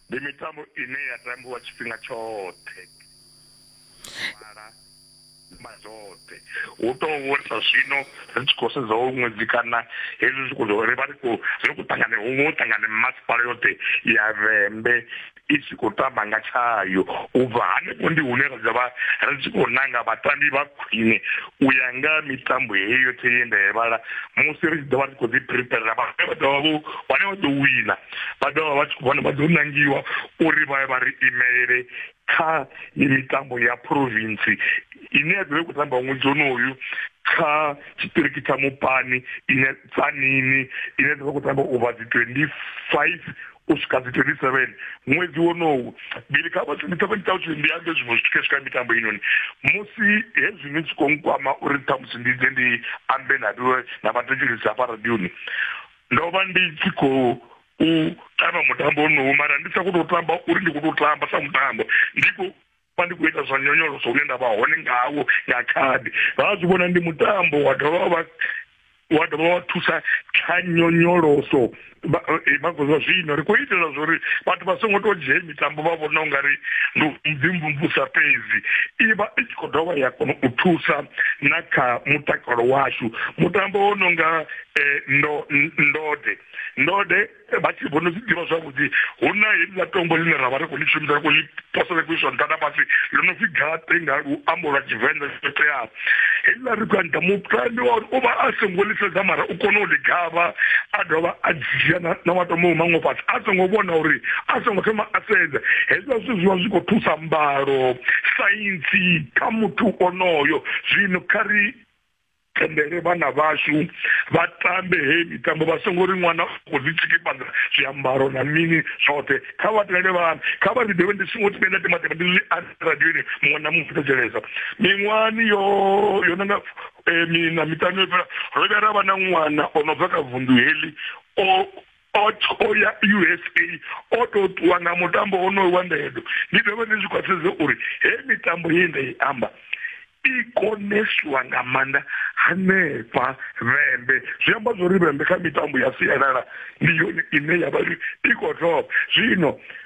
Ndi mitambo ine ya tambiwa tshifhinga tshoṱhe mala mazwoṱhe hu to vhorisa zwino ri tshi khou sedza hoyu ṅwedzi kana hezwi zwi khou ri vha ri khou ri khou ṱangana huṅwe u ṱangana masipala yoṱhe ya vhembe i tshi khou tamba nga tshayo u bva hanefho ndi hune ra dzavha ri tshi khou nanga vhatambi vha khwine u ya nga mitambo heyo yoṱhe ye nda i vhala musi ri tshi ḓovha ri khou ḓi preparer vha vha ḓovha vho vhane vha ḓo wina vha dovha vha tshi vhona vha ḓo nangiwa uri vha ye vha ri imelele kha mitambo ya province ine ya ḓovha i khou tamba ṅwedzi onoyu kha tshiṱiriki tsha mupani ine tsanini ine ya ḓovha khou tamba u vha dzi twenty five u swika dzi twenty seven ṅwedzi wonowu bili kha vhathu ndi ṱavha ṱavha tshili ndi ambe zwiṅwe zwithu khe swika mitambo inoni musi hezwi ni tshi khou nkwama uri ṱhamusi ndi ḓe ndi ambe na na vhathetshelisi hafha radioni ndo vha ndi tshi khou u tamba mutambo onowu mara ndi sa khou tou tamba uri ndi khou tou tamba sa mutambo ndi khou vha ndi khou ita zwa nyonyoloso hune nda vha hone ngawo nga khadi vha zwi vhona ndi mutambo wa dovha vha wa dovha wa thusa kha nyonyoloso vha eh, khou zwa zwino ri khou itela zwa uri vhathu vha songo tou dzhie mitambo vha vhona u nga ri ndi mvimvumvusa fhedzi i vha i tshi khou dovha ya kona u thusa na kha mutakalo washu mutambo wo no nga eh, ndo ndode ndode vha tshi vho no zwi ḓivha zwavhuḓi hu na heḽa tombo ḽine ra vha ri khou ḽi shumisa khou ḽi posela khou iswa nṱha na fhasi ḽo no pfi gaṱe nga luambo lwa tshivenḓa zwo teaho heḽa ri khou anda mutambi wa uri u vha a songo ḽi sedza mara u kone u ḽi gavha a dovha a dzhia na matombo maṅwe fhasi a songo vhona uri a songo thoma a sedza hezwa zwithu zwi vha zwi khou thusa mbalo saintsi kha muthu onoyo zwino kha ri tendele vhana vhashu vha tambe heyi mitambo vha songo ri ṅwana khou ḓi tshikipana zwiambaro na mini zwoṱhe kha vha tendele vhana kha vha ḓi dovhe ndi songo thimbe nda timatema ndi zwi radioni muṅwe na muṅwe thetshelesa miṅwahani yo yo nanga eh, mina miṱanu yo fhela ro vhuya ra vha na ṅwana o no bva kha vunḓu heḽi o o tho ya usa o tou ṱuwa nga mutambo wonoyo wa ndedo ndi dovhe ndi zwi khwaṱhisedze uri he mitambo ye nda i amba i koneswa nga maanḓa hanefha vhembe zwi amba zwo ri vhembe kha mitambo ya sialala ndi yone ine ya vha i khou thoma zwino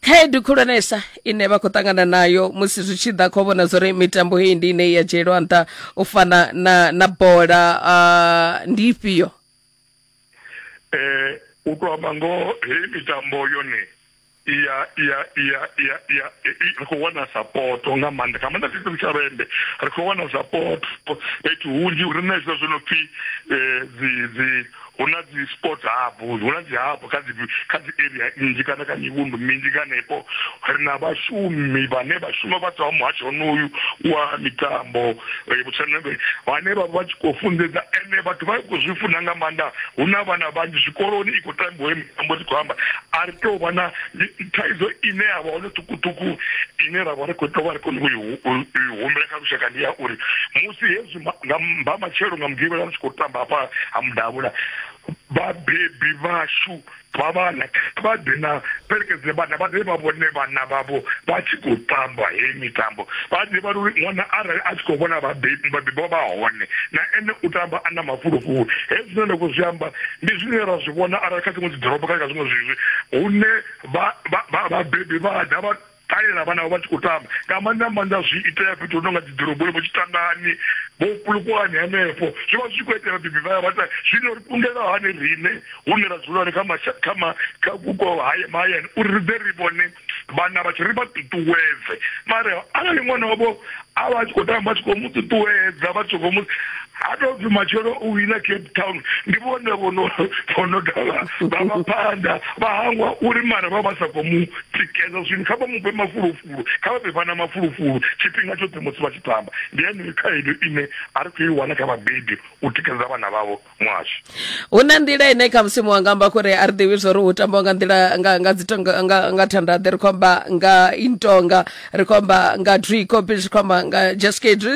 khaedu khulwanesa ine vha khou ṱangana nayo musi zwi tshi ḓa kho vhona zwori mitambo heyi ndi ine ya dzhielwa nṱha u fana na na bola uh, ndi ifhio eh u to amba ngo heyi mitambo yone iya iya iya iya iya ri khou wana sapoto nga maanḓa kha maanḓa tshithu tsha vhende ri khou wana sapoto fhethu hunzhi ri na hezwo zwo no pfhi um dzi dzi Hu na dzi sport hub, hu na dzi hub kha dzi kha dzi area nnzhi kana kha mivhundu minzhi nga hanefho. Ri na vhashumi vhane vha shuma vha bvaho muhasho honoyu wa mitambo vhotshena vhane vha vha tshi khou funḓedza ende vhathu vha khou zwi funa nga maanḓa. Hu na vhana vhanzhi zwikoloni i khou tambiwa heyi mitambo ndi khou amba. A ri tou vha na thaidzo ine ya vha hone ṱhukhuṱhukhu ine ra vha ri khou tou vha ri khou i humbela kha lushaka ndi ya uri musi hezwi. nga mba matshelo nga mugivhela ni tshi khou tamba hafha ha mudavhula vhabebi vhashu vha vhana vha ḓe na fhelekedze vhana vha ḓe vha vhone vhana vhavho vha tshi khou tamba heyi mitambo vha ḓe vha uri ṅwana arali a tshi khou vhona vhabebi vhabebi vha hone na ene u tamba a na mafulufulu hezwi zwine nda khou zwi amba ndi zwine ra zwi vhona arali kha dziṅwe dzi ḓorobo kana kha zwiṅwe zwizwi hune vhabebi vha ḓa vha Kale na vhana vha tshi khou tamba nga maanḓa maanḓa zwi itea fhethu hu no nga dziḓoroboni vho tshitangani vho kulukuwani henefho zwi vha zwi tshi khou itela vhabebi vha ya vha ta zwino ri kundela hani riṋe hune ra dzula hone kha masha kha ma kha vhupo haya mahayani uri ri ḓe ri vhone vhana vhathu ri vha ṱuṱuwedze mara arali ṅwana wavho a vha tshi khou tamba tshi khou mu ṱuṱuwedza vha tshi khou mu ha tou pfi matshelo u wina cape town ndi vhone vhono vhono dovha vha vha phanḓa vha hangwa uri mara vha vha sa khou mu tikedza zwino kha vha mu fhe mafulufulu kha vha fhe vhana mafulufulu tshifhinga tshoṱhe musi vha tshi tamba ndi yeneyo khaedu ine a ri khou i wana kha vhabebi u tikedza vhana vhavho muhasho hu na nḓila ine kha musimu wanga amba kuri a ri ḓivhi zwo ri hu tambiwa nga nḓila nga nga dzitonga nga nga thandaḓe ri khou amba nga intonga ri khou amba nga drikopi ri khou amba nga jaskade ri